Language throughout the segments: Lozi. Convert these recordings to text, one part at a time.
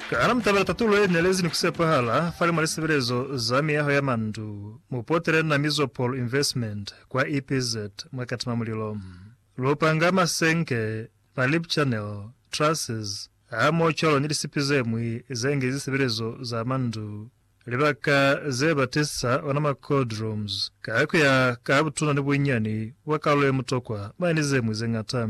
Ka ana mutabela tatulo ye nelezi ni kusepahala fali mwa lisebelezo za miyaho ya mandu, mupotele na Mizopol Investment kwa EPZ mwa Katima Mulilo. Lupanga, masenke, ma lip channel, trusses, hamoho cwalo ni lisipi zemwi zengi zisebelezo za mandu, libaka ze batisa ona ma cold rooms, ka kuya ka butuna ni bunyani bwa kalulo ye mutokwa, mane ni zemwi zeñata.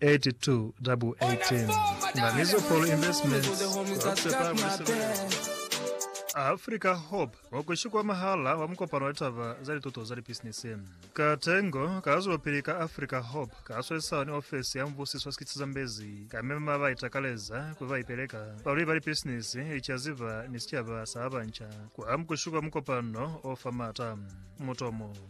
8218 na Mizopolo Investments kwa kusepa mweselelo. Africa Hope wa ku shikwa mahala wa mukopano wa litaba za lituto za lipisinisi. Ka tengo, ka zwelopili ka Africa Hope ka swesisana ni ofesi ya mubusiso wa sikiti sa Zambezi ka mema ba ba itakaleza ku ba ipeleka, balwi ba lipisinisi, licaziba ni sicaba sa ba banca kwa ku shikwa mukopano o fa maata. Mutomo.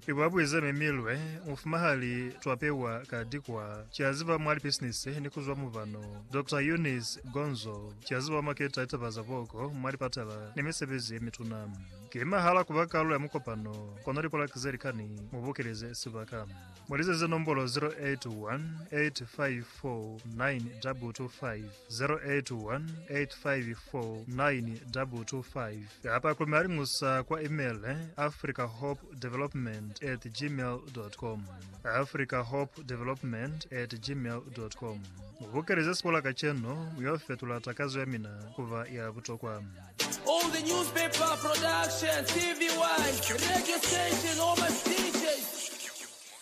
Ki ba buize mi milwe mufuma hali twa pewa ka dikwa ki a ziba mwa lipisinisi ni kuzwa mubano Doctor Eunice Gonzo ki a ziba maketa litaba za boko mwa lipatala ni misebezi ye mituna. Ki mahala kuba kalulo ya mukopano kono lipolaki ze likani mu bokeleze sibaka. Mu lizeze nombolo 0818549225. 0818549225 kapa ku malingusa kwa email africahopedevelopment at gmail.com africahopedevelopment at gmail.com mubukelize sikola kacenu muyo fetula takazo ya mina kuba ya butokwa All the newspaper production, TV1, radio station, all my DJs.